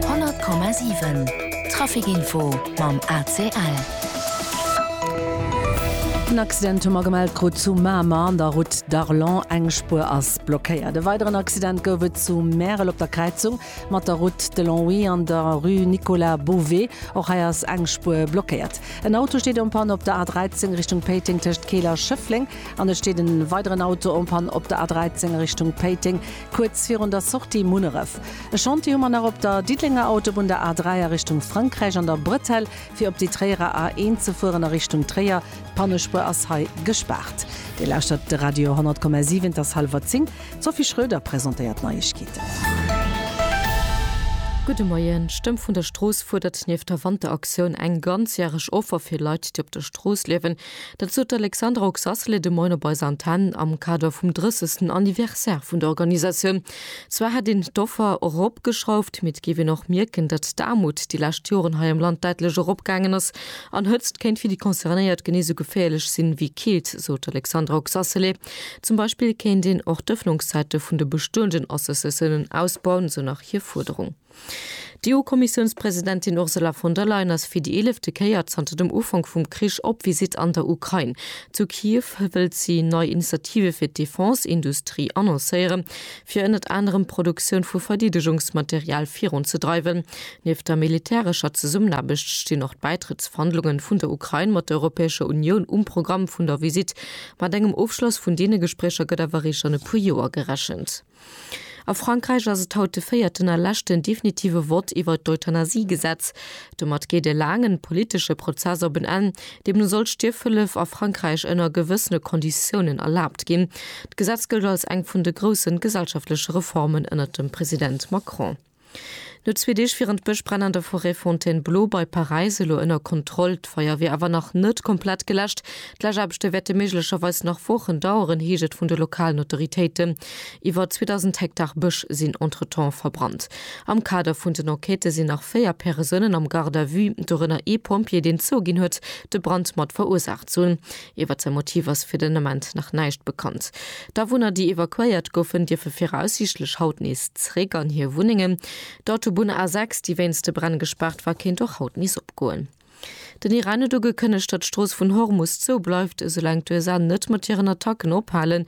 100,7 Traficinfo mam ACL. En Accident hu mer gemellt krut zu Mamer an der Route d'Arlon. Eng Spuer ass blockéiert. E weideren Accident gouf et zu Märel op der Kräizung mat der Route de Longwy an der Rue Nicolas Bové. Och hei ass eng Spuer blockéiert. En Auto steet en panne op der A13 Richtung Péiteng tëscht Keel a Schëffleng an et steet e weideren Auto en panne op der A13 a Richtung Péiteng. Kuerz virun der Sortie Munneref. E Chantier hu mer nach op der Diddelenger Autobunn, der A 3 a Richtung Frankräich an der Bretelle fir op déi Tréierer A 1 ze fueren a Richtung Tréier. D'Pannespuer ass hei gespaart. Dir lauschtert de Radio 100,7. Et ass hallwer 10. D'Sophie Schröder presentéiert d'Neiegkeeten. Gudde Moien. D'Stëmm vun der Strooss fuerdert nieft der Wanteraktioun eng ganzjäreg Offer fir Leit, déi op der Strooss liewen, Dat sot d'Alexandra Oxacelli de Moien op eiser Antenn am Kader vum 30. Anniversaire vun der Organisatioun. Zwar hätt een d'Offer eropgeschrauft, mee et géif een och mierken, datt d'Aarmut déi lescht Joren hei am Land däitlech eropgaangen ass an Hëtzt kéint fir déi Concernéiert genee esou geféierlech sinn, ewéi Keelt, sot d'Alexandra Oxacelli. Zum Beispill kéint een och d'Ëffnungszäite vun de bestoenden Associatiounen ausbauen, esou nach hir Fuerderung. D'EU-Kommissiounspresidentin Ursula von der Leyen ass fir déi eelefte Kéier zanter dem Ufank vum Krich op Visitt an der Ukrain. Zu Kiew wëllt si nei Initiative fir d'Defense-Industrie annoncéiere fir ënnert anerem d'Produktioun vu Verdeedegungsmaterial virun ze dreiwen. Nieft der militärescher Zesummenaarbecht stinn och d'Bäitrëttsverhandlunge vun der Ukrain mat der Europäescher Unioun um Programm vun der Visitt. Mat engem Ofschloss vun deene Gespréicher gëtt awer eréischt an e puer Joer gerechent. A Frankräich ass et haut de véierten a leschten definitive Vott iwwert d'Euthanasiegesetz. Domat geet e laangen politesche Prozess op en Enn. Deemno soll d'Stierfhëllef a Frankräich ënner gewëssene Konditiounen erlaabt ginn. D'Gesetz gëllt als eng vun de groussen gesellschaftleche Reformen ënnert dem President Macron. No zwee Deeg wieren d'Bëschbränn an der Forêt Fontainebleau bei Paräis elo ënner Kontroll. D'Feier wier awer nach net komplett geläscht. D'Läschaarbechte wäerte méiglecherweis nach Wochen daueren, heescht et vun de lokalen Autoritéiten. Iwwer 2.000 Hektar Bësch sinn entretemps verbrannt. Am Kader vun den Enquêtë sinn nach véier Persounen am Garde à vue, dorënner ee Pompjee, deen zouginn huet, de Brand mat verursaacht ze hunn. Iwwer säi Motiv ass fir den Ament nach näischt bekannt. D'Awunner, déi evakuéiert goufen, dierfe viraussiichtlech haut nees zeréck an hir Wunnengen. D'Autobunn A6, déi wéinst de Bränn gespaart war, kéint och haut nees opgoen. Den Iran huet ugekënnegt, datt d'Strooss vun Hormus zou bleift, esoulaang d'USA net mat hiren Attacken ophalen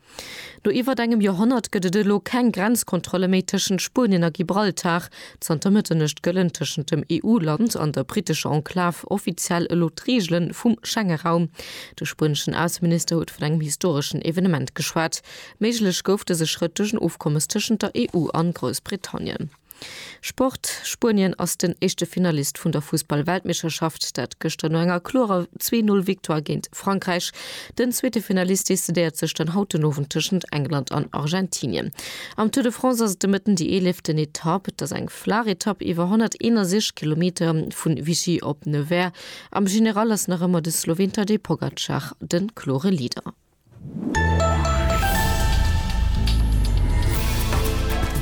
No iwwert engem Joerhonnert gëtt et elo keng Grenzkontrolle méi tëschent Spuenien a Gibraltar. Zanter Mëtternuecht gëllen tëschent dem EU-Land an der brittescher Enklav offiziell elo d'Reegele vum Schengeraum. De spueneschen Ausseminister huet vun engem historeschen Evenement geschwat. Méiglech gouf dëse Schrëtt duerch en Ofkommes tëschent der EU an Groussbritannien. Sport, Spuenien ass den éischte Finalist vun der Fussball-Weltmeeschterschaft, dat gëschter no enger klorer Zwee-Null-Victoire géint Frankräich. Den zweete Finalist decidéiert sech dann haut den Owend tëschent England an Argentinien. Am Tour de France ass et de Mëtten déi eeleeften Etapp. Et ass eng flaach Etapp iwwer 161 Kilometer vun Vichy op Nevers. Am General ass nach ëmmer de Sloween Tadej Pogacar de klore Leader.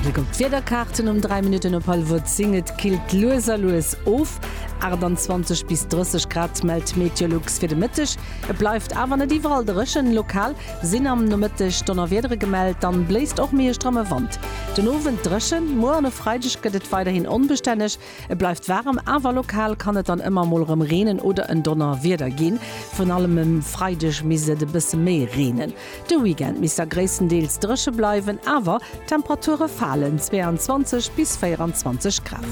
Bléck op d'Wiederkaarten um 3 Minutten op hallwer 10, Et killt lues a lues of, 28 bis 30 Grad mellt d'Meteolux fir de Mëtteg. Et bleift awer net iwwerall dréchen, lokal sinn am Nomëtteg Donnerwiedere gemellt, dann bléist och méi e stramme Wand. Den Owend dréchen, muer an e Freideg gëtt et weiderhin onbestänneg. Et bleift waarem, awer lokal kann et dann ëmmer mol rem reenen oder en Donnerwieder ginn. Vrun allem um Freideg misst et e bësse méi reenen. De Weekend misst da gréisstendeels dréche bleiwen, awer d'Temperature falen, 22 bis 24 Grad.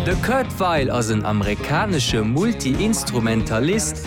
De Kurt Weill ass en amerikanesche Multi-Instrumentalist,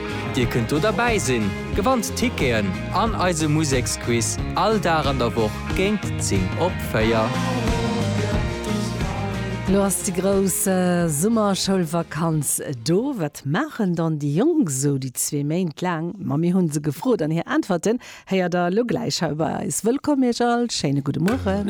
Dir kënnt do derbäi sinn, gewannt Ticketen an eise Museksquiz all Dag an der Woch géint 10 op 4. Lo ass déi grouss Summerschoulvakanz do. Wat maachen dann déi Jonk sou déi zwee Méint laang? Ma mir hu se gefrot an hir Äntwerten héiert der elo gläich hei bei eis. Wëllkomm iech all, schéine gudde Mueren.